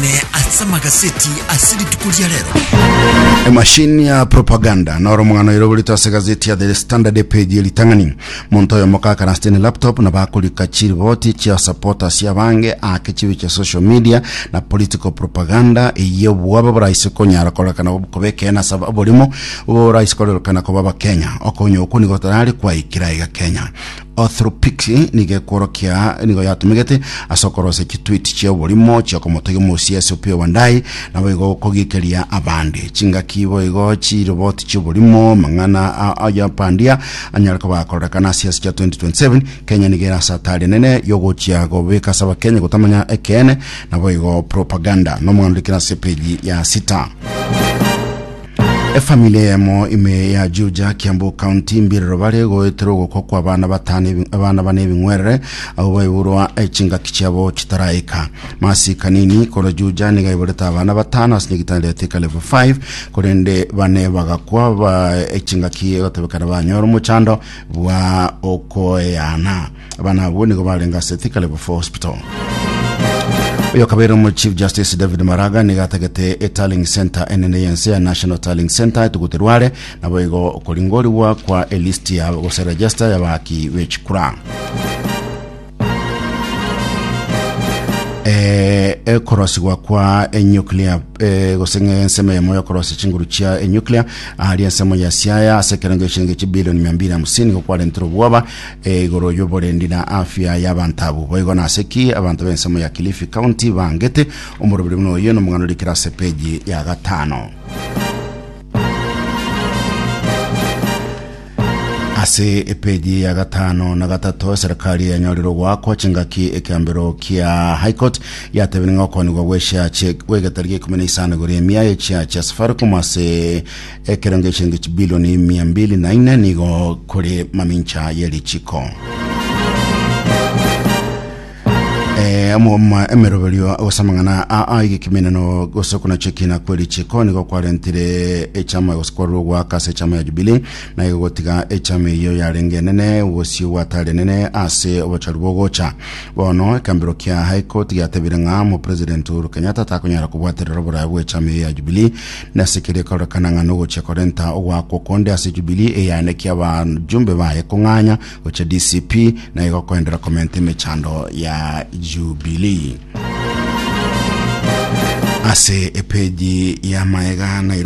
Ne ase amagaseti ase rituko ria rero. emashini ya propaganda noro omong'ano oirogoretwe ase gazeti ya the standard page ye ritang'ani monto oyo mokakana ase ne laptop na bakorika chiriboti chia supporters abange ake chibe chia social media na political propaganda eye obwabe boraise konyara korekana ob- koba ekena ase oborimo boraise korekana koba abakenya okonya okwo nigo tarare kwaikera iga kenya Orthopix nigo ekworokia nigo yatomegete ase okorosia chitweet chia oborimo chia okomotogia omosia ase Opiyo Wandayi, naboigo kogikeria abande. Chingaki boigo chiroboti chi'oborimo mang'ana a oyopandia anyare koba akorerekana ase siasa chia 2027, Kenya nigo ere ase atari enene yogochia gobeka ase abakenya gotamanya ekeene naboigo propaganda. Nomwandorekeri ase page ya sita. Efamili eyemo ime ya Juja, Kiambu County, mbirero bare goetera ogokwa kwa abana batano ebi- abana bane ebing'werere abo baiborwa eh, chingaki chiabo chitaraika. Masika nini koro Juja niga iborete abana batano ase nyegitanda ya Thika level 5 korende bane bagakwa ba eh, chingaki egotebekana banyora omochando bwa okoeana. Abana abwo nigo barenge ase Thika Level 4 Hospital. Oyo kabere omo Chief Justice David Maraga nigo atagete e Tallying Center enene yense ya National Tallying Center etuguti rware nabo igo okoringorigwa kwa e list ya gose register ya baki bechikura. eh, ekorosigwa kwa enuclear eh, gose ng'a ensemo yamo yokorosia chinguru chia enuclear ahari ensemo ya siaya ase ekerengo echiringi chibilioni mia mbili na hamsini gokwarentire obwoba Ee, igoro y'oborendi na afya y'abanto abwo. Boigo nase ki abanto b'ensemo ya Kilifi County baangete? Omoroberi buna oye nomong'ana oria kera ase peji ya gatano. Ase epeji ya gatano na gatato eserekari yanyorire ogoakwa chingaki ekeambero kia High Court yatebire ng'a okoonigwa gw'echiache gw'egetari geikumi na isano igoro y'emiae echiache ya Safaricom ase Ekero ngechenge chibilioni mia mbili na ine nigo kore mamincha ye richiko. Eh, omoma emeroberio gose amang'ana aa egekiminano gose okonacha ekina kwe richiko nigo kwarentire echama gose kwarure ogwaka ase echama ya jubili naye gotiga echama eyo yarenge enene obosio bwatari enene ase obochari bwogocha bono ekambero kia high court giatebire ng'a omopresident uhuru kenyatta takonyara kobwaterera oboraya bw'echama eyo ya jubili Nase keria ekorekana ng'a nogochia korenta ogoakwa okonde ase Jubilee eyanekia abajumbe baye kong'anya gochia DCP, na igo koendera komenta emechando ya Jubilee. Ase epeji ya Maega, Nairobi.